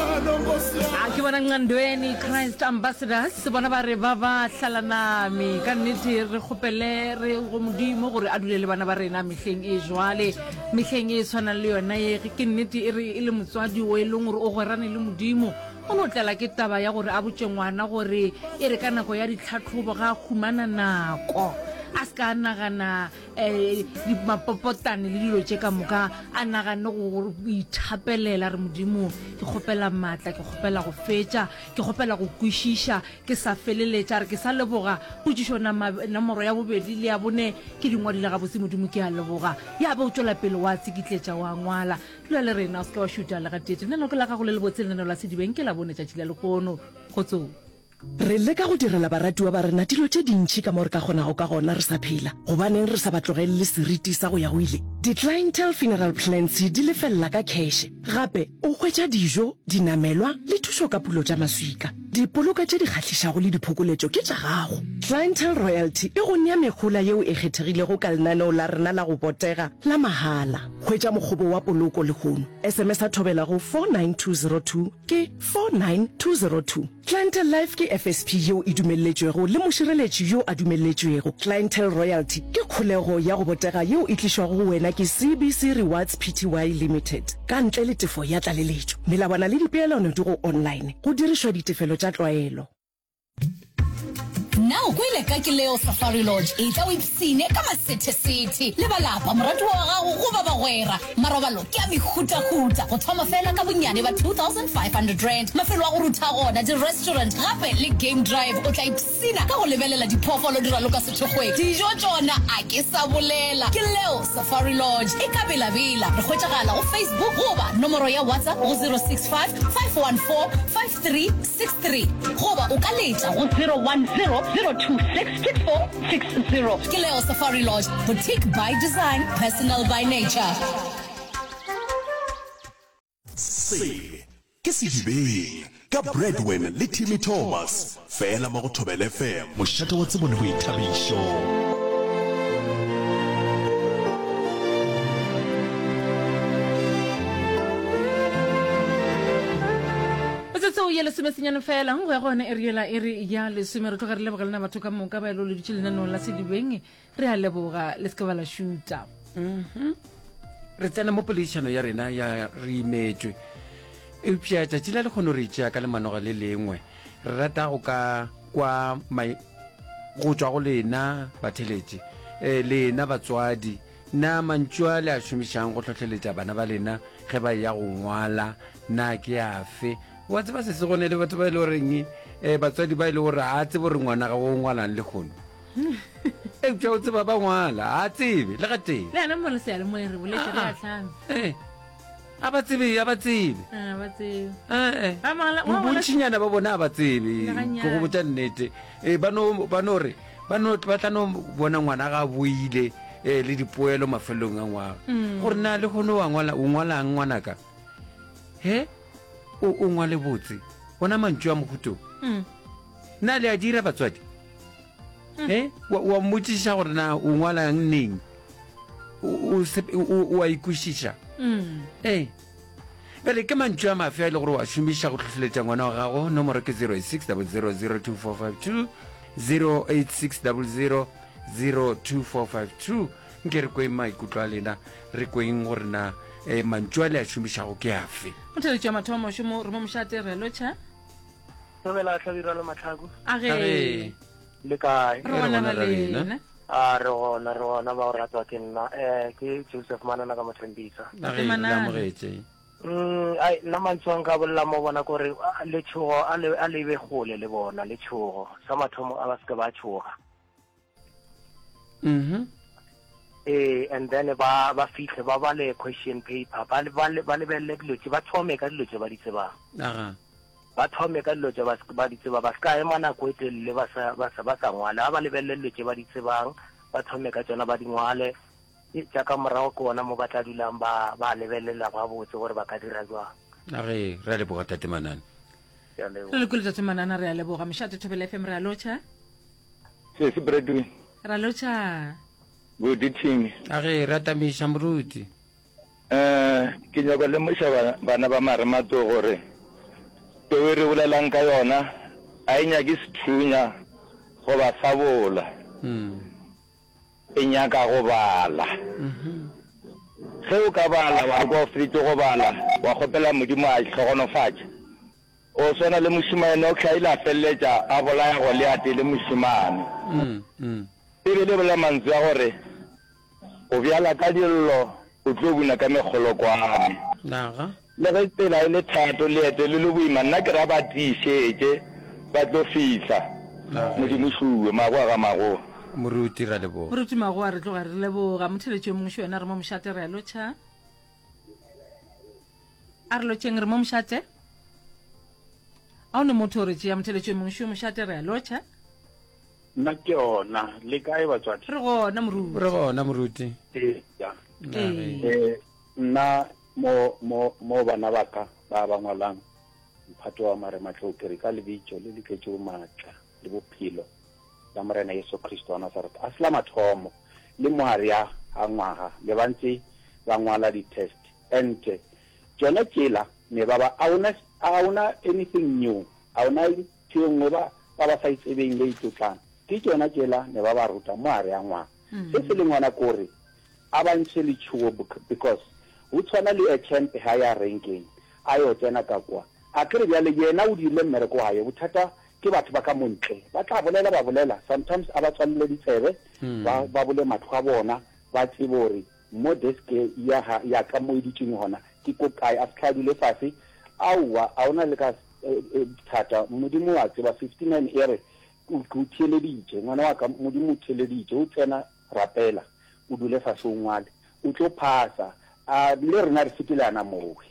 a ke bona nqandweni christ ambassadors bona ba re ba ba hlalanami ka nnete re kgopele re go modimo gore a dule le bana ba rena mehleng e jwale mehleng e tshwanang le yona ye ke nnete e re e le motswadi o e leng gore o gwerane le modimo o no tlala ke taba ya gore a botse ngwana gore e re ka nako ya ditlhatlhobo ga a humana nako a se ka nagana Eh, mapopotane le dilo tše ka moka a nagane go ithapelela re modimo ke kgopela maatla ke kgopela go fetša ke kgopela go kwešiša ke sa feleletša re ke sa leboga potsišo nomoro ya bobedi le ya bone ke dingwadile gabotse modimo ke a leboga ya be o tšwela pele wa tsekitletša wa ngwala dula le rena o se ke wa šuta lega tete lenoko la gago le lebotse lenano la sedibeng ke la bone tšatši la lekono go tsong Re leka go direla baratiwa ba rena dilo tše dintši ka mo re ka kgonago ka gona re sa phela. Gobaneng re sa ba tlogelele seriti sa go ya go ile? Di-clientele funeral plans di lefelela ka kheshe. Gape, o hwetša dijo, dinamelwa le thušo ka pulo tša maswika. Dipoloko tše di kgahlišago le diphokoletšo ke tša gago. Clientele Royalty e go nea mehola yeo e kgethegilego ka lenaneo la rena la go botega la mahala. Hwetša mokgobo wa poloko lehono. SMS-a thobela go 49202 ke 49202. Clientele Life ke FSP yeo e dumelletšwego le mošireletši yo a dumelletšwego. Clientele Royalty ke kholego ya go botega yeo e tlišwago go wena ke CBC Rewards Pty Limited ka ntle le tefo ya tlaleletšo. Melawana le dipeelano di go online go dirišwa ditefelo tša tlwaelo. Na o kwele ka Kileo Safari Lodge? Etla o ipshine ka masethesethe le ba lapa, moratiwa wa gago goba bagwera Marobalo ke a mehutahuta, go thoma fela ka bonnyane ba R2,500. Mafelo a go rutha gona, di-restaurant gape le game drive. O tla ipshina ka go lebelela diphoofolo di raloka sethokgweng. Dijo tšona a ke sa bolela. Ke leo Safari Lodge e ka belabela. Re hwetšagala go Facebook goba nomoro ya WhatsApp go 065 514 5. 363 goba o ka letša go 0100266460. Ke Leo Safari Lodge, boutique by design, personal by nature. Se ke Sedibeng ka Bradwin le Timmy Thomas. Fela mo go Thobela FM. Mošate wa tsebo le boithabišo. tseo ya lesomesenyane fela go ya go yone e riela e re ya lesome re tloga re leboga lena batho ka moka ba e loleditše lenanong la sedibeng re a leboga le se ke ba la šuta mhm. re tsena mo poledišano ya rena ya re imetšwe eupša tšatši la le kgone re itšea ka lemanoga le lengwe re rata go ka kwa go tswa go lena batheletše um lena batswadi na mantšu a le a šomišang go tlhotlheletša bana ba lena ge ba ya go ngwala na ke afe wa tseba se se gone le batho ba e le goreng um batswadi ba e le gore a tsebo gore ngwana ga o ngwalang le kgono eupša o tseba ba ngwala a tsebe le ga tee le ana mo re seyalemoyeng re boletse re atlhame ah, ah. eh, a ba tsebe a ba tsebe ah, eh, eh. bontšhinyana ba bone a ba tsebe ke go botsa nnete ba no re ba tla no bona ngwana ga a boile um le dipoelo mafelelong a ngwaga mm. gore na le gone o ngwalang ngwanaka he o ngwale botse ona mantšu a mokhuto mm. na le a dira batswadi e eh, wa mmotsiša gore na o ngwalang neng o a ikwešiša mm. ee eh, bjale ke mantšu a mafe a e le gore wa šomiša go tlhotlheletša ngwana wa gago nomoro ke 086 0002452 086 0002452 nke re kweng maikutlo a lena re kweng gore na um mantšu a le a šomišago ke afe motheletswa mathomo šomo re mo mošate re lotšha Dumela Hlabirwa le Matlhaku. A ge. Le kae? Re gona ga lena. A re gona re gona ba o ratwa ke nna. Eh ke Joseph Manana ka Mothembisa. A ge Manana. Amogetse. Mm ai nna mantsoang ka bolla mo bona gore le tshogo a le a le be gole le bona le tshogo sa mathomo a ba se ba tshoga. mm eh and then ba ba fihle ba bale question paper ba ba lebelele dilo tse ba thome ka dilo tse ba di tsebang aga ba thome ka dilo tse ba ba di tseba ba ska ema nako e telele ba sa ba sa ba sa ngwale ba lebelele dilo tse ba di tsebang ba thome ka tsona ba di ngwale e tsa ka morago ke ona mo ba tla dulang ba ba lebelela ba botse gore ba ka dira jwang a re re leboga tatemanane re le kule tatemanana re a leboga mešate thobela fm re a lotšha Sesi Bradwin. Ra lotšha. Good eating. A ge re atamiša moruti. Eh, ke nyoko lemoša bana ba Maremato gore teo e re bolelang ka yona a e nyake sethunya go ba sabola. Mm. E nyaka go bala. Mm -hmm. Ge o ka bala wa re kwa o feditse go bala wa kgopela Modimo a tlhogonofatša. O swana le mošemane o hlaile a feleletša a bolaya Goliate e le mošemane. Beibele e bolela mantswe a gore, O bjala ka dillo, o tlo buna ka mekgolokwane. Le ge tsela e le thato, leeto le le boima, nna ke ra ba tiišetše, ba tlo fihla. Modimo o šuwe. Magoa ga Magoa. Moruti, re a leboga. Moruti Magoa, re tloga re leboga. Motheletši yo mongwe še yena re mo mošate, re a lotšha. A re lotšheng, re mo mošate. A o ne motho o re tšea motheletšo e mongwe šo mošate, re a lotšha. Nna ke ona. Le kae batswadi? Re gona moruti. Re gona moruti. Eya. Ee. Nna mo, mo, mo bana ba ka ba ba ngwalang mphato wa marematlou ke re, ka lebitšo le le tletšego maatla le bophelo la Morena Jesu Kriste wa Nasareta, a se la mathomo le moa re a a ngwaga le ba ntse ba ngwala di-test. ente tšona tšela me ba ba a ona a ona anything new a ona ntho e nngwe ba ba ba sa itsebeng le itlotlang ke tšona tšela me ba ba ruta mo a re a ngwana se se leng ona kore a ba ntshe letšhuo because ho tshwana le a champ ha ya renkeng a yo tsena ka kwa a kere bjale yena o dirile mmereko wa hae bothata ke batho ba ka montle ba tla bolela ba bolela sometimes a ba tswalele ditsebe ba ba bole matlho a bona ba tsebe hore Mo desk ya ga ya ka mo e dutšeng gona ke ko kae a se tlha dule fase aowa a ona le ka thata modimo wa tseba 59 ere o ke o theeleditše ngwana wa ka modimo o theeleditše o tsena rapela o dule fase o ngwale o tlo phasa a le rena re sepelana mowe.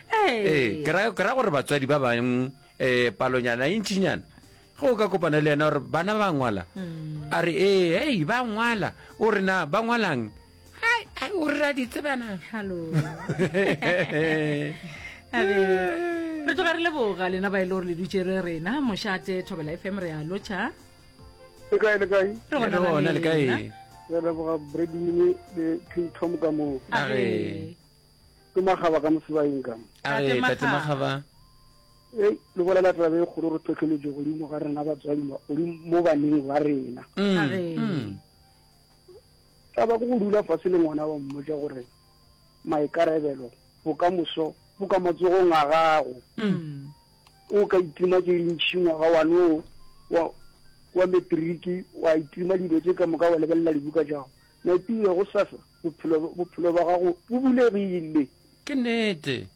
ee ke ra ke ra gore batswadi ba bang um palonyana e ntšinyana ge o ka kopana le yena gore bana ba ngwala a re ee hei ba ngwala o re na ba ngwalang "Hai, ai, o re ra di tsebana Hello. A re, re tloga re leboga lena ba e le gore le dutše re rena mošate thobela fm re a lotšha le kae le kae re Re gonana gona le le kae lena. re leboga bredimine le king tom ka moo a re ke magaba ka mosebaeng ka Tate Magaba. e le bolela taba e kgolo re tlhotlheletso godimo ga rena batswadi ba- godimo mo baneng ba rena Mm, Ga re- mm. taba ke go dula fase le ngwana wa mmotsa gore maikarebelo bokamoso bo ka matsogong a gago Mm. o ka itima ke ntšhi ngwaga wane o wa wa metriki wa itima dilo tse ka moka wa lebelela dibuka jago maipile go sasa Bophelo, bophelo bja gago bo bulegile. Ke nnete.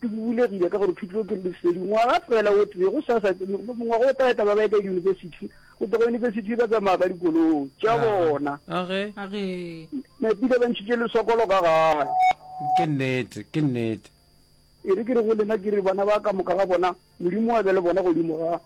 Ke bo bulegile ka gore thuto ke lesedi. Ngwaga fela o tee, go sa sa, mongwaga o tla eta ba ba ya ka diyunibesithi, go tloga yunibesithi ba tsamaya ka dikoloi tša bona. Age. Age. Nepile ba ntšhitše lesokolo ka gae. Ke nnete, ke nnete. E re ke re go lena, ke re bana ba ka moka ga bona, Modimo a be le bona godimo ga.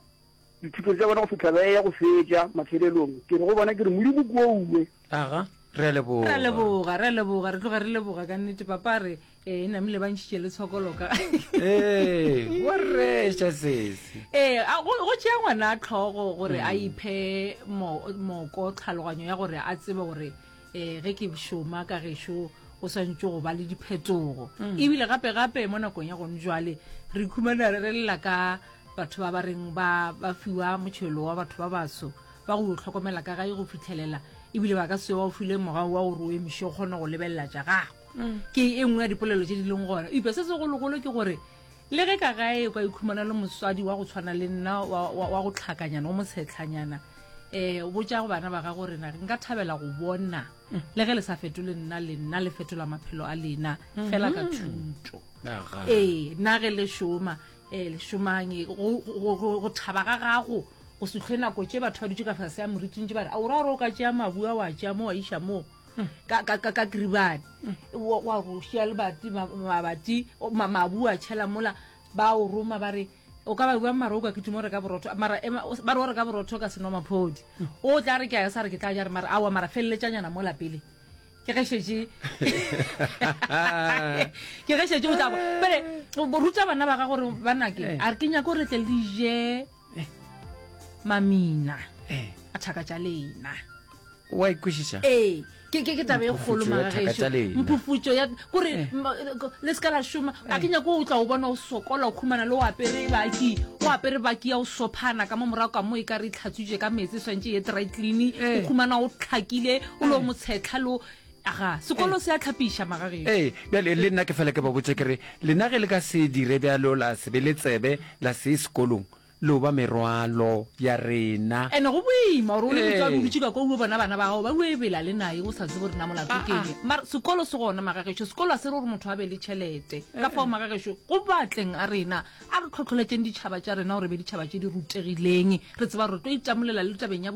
Dithuto tša bona go fihla ba eya go fetša, mafelelong, ke re go bona, ke re, Modimo kwoue. Aga, re a leboga. Re a leboga, re a leboga, re tloga re leboga ka nnete, Papa, re, ee, namile ba ntšhitše le tshokolo ka. Ee, wa reša sesi. Ee, a, go, go tšea ngwana tlhogo gore a iphe mo, moko, tlhaloganyo ya gore a tsebe gore. um ge ke šoma ka gešo go swantse go ba le diphetogo mm. ebile gape gape mo nakong ya gone jwale re ikhumana re lela ka batho ba ba reng ba fiwa motšhelo wa batho ba baso ba go tlhokomela ka gae go fitlhelela ebile ba ka se wa o file morago wa gore o emise o kgone go lebelela ja gago mm. ke e nngwe ya dipolelo tse di leng gona epe se segologolo ke gore Le ge ka gae o ka ikhumana le moswadi wa go tshwana le nna wa go tlhakanyana o motshetlhanyana um botša go bana ba gago rena nka thabela go bona le ge le sa fetole nna le nna le fetola maphelo a lena fela ka mm-hmm. thuto ee nna ge le šoma um eh, le šomang go thaba ga gago go setlhwe nako tše batho ba dutse ka fase ya moriting tse ba re a o ra gore o ka tšea mabua wa tšea mo wa iša moo ka ka ka ka kiribane wa wa go šia lebati ma- mabati o- ma- mabu a tšhela mola ba o roma ba re o ka ba bua mara o ka ke tumo re ka borotho mara ema- o- ba re o re ka borotho o ka seno maphodi o tla re ke a sa re ke tla ja re mara awa mara feleletsanyana mola pele ke ge šetše ke ge šetše o tla bo- pele o- o ruta bana ba ga gore ba nake a re ke nyako re tle le je eh. mamina eh. a thaka tša lena wa ikwešiša ee ke ke ke tabe e kgolo magageso mphufutso ya kore eh. le se ka la šoma a ke nyako o tla o bona o sokola o khumana le o apere baki o apere baki ya o sophana ka mo morago ka mo e ka re tlhatswitse ka metsi swantse ye dry clean o khumana o tlhakile o le o motshetlha lo Aga, sekolo se a tlhapiša magagešo. Ee, bjale le nna ke fela ke ba botše ke re, lena ge le ka se dire bjalo la se be le tsebe la se ye sekolong, lo ba merwalo ya rena. And go boima gore o le motswadi o dutše ka kwa o yo bona bana ba gago ba yo ebela le naye o sa tsebe gore na molato ke eng. Mara sekolo se gona magagešo, sekolo ga se re gore motho a be le tšhelete. Ka fao magagešo, go batleng a rena a re tlhotlholetšeng ditšhaba tša rena gore e be ditšhaba tše di rutegileng, re tseba gore re tlo itamolela le tabeng ya